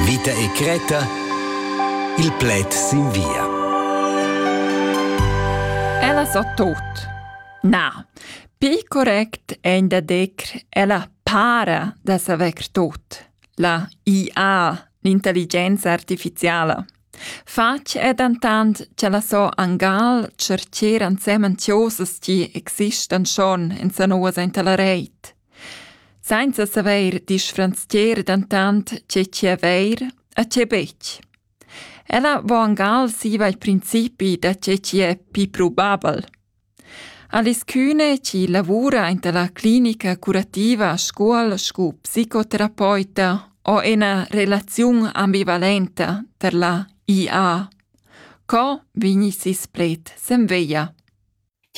Vita e Creta Il pled sin via. Ella sa tot. Na, pi correct è da decr ella para da saver tot. La IA, l'intelligenza artificiala. Fatg è dentant che la so angal cercer ansemen tiosas ti existan schon in sanoas inta la reit. Sainza savair disfranzcher dentant tge chi avair e tge betg. Ella vo angal siva il principi da tge chi è pii probabel. Alischüne, chi lavura aint la clinica curativa Scuol scu psicoterapeuta, ho ena relaziun ambivalenta tar la IA. Co vegni sis pled sen veia.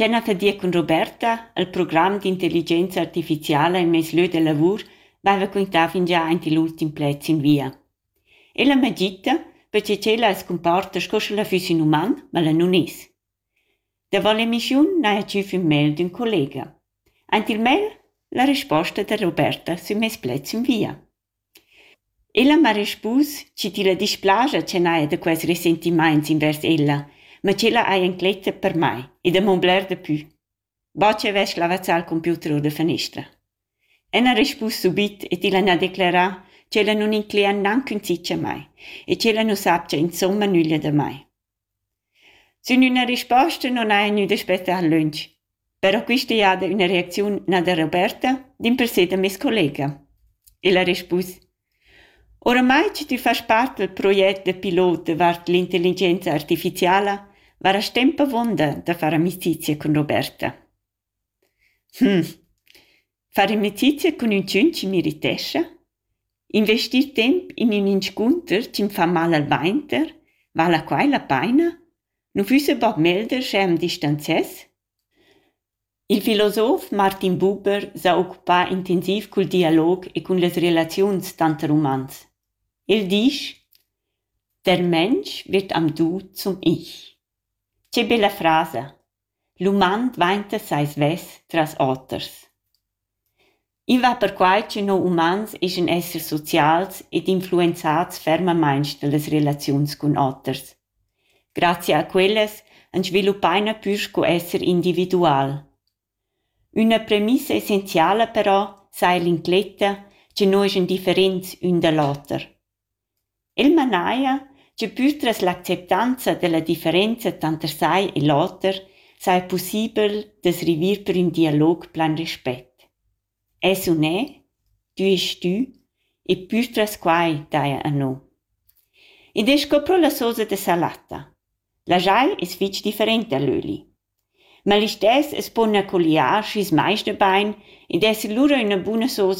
Tgena che dir cun Roberta, el program d'intelligenza artificiala en mes lieu de lavur veva quintà fingià aint igl ultim pled sin via. Ella m'ha gita, perche ch'ella as cumporta sco sch'ella füss ün uman, ma ella nun es. Davo l'emissiun n'haja tgü fin mail d'ün collega. Aint il mail la resposta da Roberta sün meis pled sün via. Ella m'ha respus chi tilla displaja ch'el haja da quels resentimaints invers ella, ma ch'ella haja incletta per mai e da m'on bler dapü, bod chi avess lavazzà il computer our da fanestra. Ella ha respus subit e tilla n'ha declerà ch'ella nun inclegia gnanc ün tschich a mai e ch'ella nu sapcha insomma nüglia da mai. Sün üna risposta non haja gnü daspetta lönch, però quista jada üna reacziun na da Roberta, dimpersè da meis collega. El ha rispus: «Oramai cha tü fast part dal proget da pilot davart l'intelligenza artificiala, varast temp avonda da far amicizia cun Roberta.» Far amicizia cun üntschun chi meritescha, investir temp in ün inscunter chi'm fa mal al vainter, vala quai la paina? Nu füssa bod meglder sche am distanzess? Il filosof Martin Buber s'ha occupà intensiv cul dialog e cun las relaziuns tanter umans. El disch: Der Mensch wird am Du zum Ich. Che bella frasa! L'uman dvainta sai svess tras oters. I va perquai ch'üno umans eschan essers socials ed influenzats fermamaing dallas relaziuns cun oters. Grazia a quellas ans sviluppaina pür sco esser individual. Üna premissa essenziala però saja l'incletta cha no eschan differents ün da l'oter. El manaja che pür tras l'acceptanza dalla differenza tanter sai e l'oter saja pussibel da's river per ün dialog plan respet. Es u ne, tü est tü e pür tras quai daja a no. Id es sco pro la sosa da salatta. La jai es fich different da l'öli. Ma listess as pon accogliar schi's meis da bain ed esser lura üna buna sosa